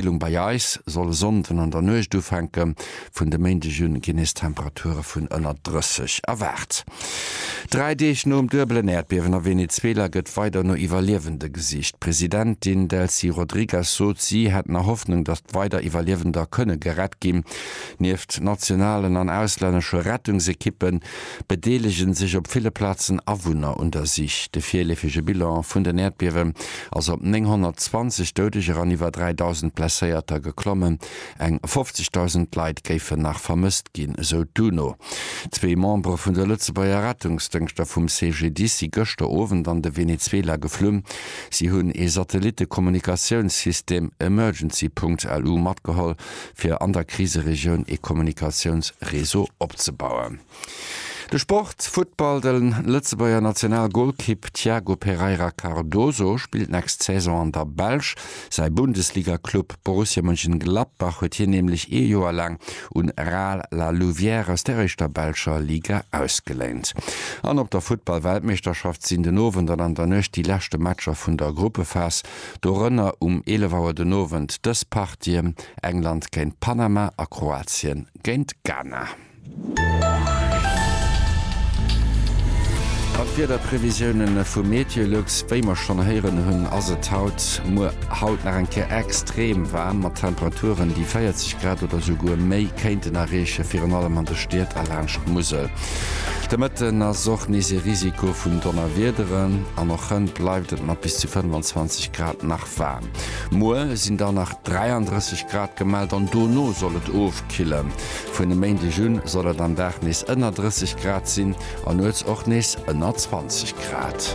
D'Erwiermungskillung bei eis soll e Sonnden an der Nuecht ufänken. Vun de Méindeg un ginn nees Temperature vun ënner 30 erwaart. Dräi Deeg nom duebelen Äerdbiewen a Venezuela gëtt weider no Iwwerliewende gesicht. D'Presidentin Delcy Rodrigues sot, si hätt nach Hoffnung, datt weider Iwwerliewender kënne gerett ginn. Nieft nationalen an auslännesche Rettungsekippen, bedeelegen sech op ville Plazen Awunner un der Sich. De virleefege Bilan vun den Äerdbiewen ass op 920 Doudeger an iwwer 3.000 Blesséierter geklommen. Eng 50.000 Leit géifen nach vermësst ginn, esou d'UNO. Zwee Membere vun de Lëtzebuerger Rettungsdëngschter vum CGDIS si gëschter Owend an de Venezuela geflunn. Si hunn ee Satellitte-Kommunikatiounssystem Emergency Punkt, elu, matgeholl, fir an der Kriseregioun ee Kommunikatiounsreseau opzebauen. De Sport, Futtball, De Lëtzebuerger National-Golkipp Thiago Pereira Cardoso spillt nächst Saison an der Belsch. Säi Bundesliga-Club Borussia Mönchengladbach huet hien nämlech ee Joer laang un Ral La Louvière aus der éischter belscher Liga ausgeléint. An op der Futtball-Weltmeeschterschaft sinn den Owend an an der Nuecht déi leschte Matcher vun der Gruppephas. dorënner um 11 Auer den Owend dës Partien, England géint Panama a Kroatien géint Ghana. Mat Wiederprevisiounen vu MeteoLux. Wéi mer schonn héieren hunn, ass et haut, muer, haut nach eng Kéier extrem waarm, mat Temperaturen, déi 40 Grad oder esouguer méi kéinten erreechen, virun allem an de Stied a laanscht d'Musel. De Mëtten ass och nees ee Risiko vun Donnerwiederen an och hënt bleift et mat bis zu 25 Grad nach waarm. Muer sinn dann nach 33 Grad gemellt an dono soll et ofkillen. Vun e Méindeg un soll et am Dag nees ënner 30 Grad sinn an nuets och nees ënner 20 Grad.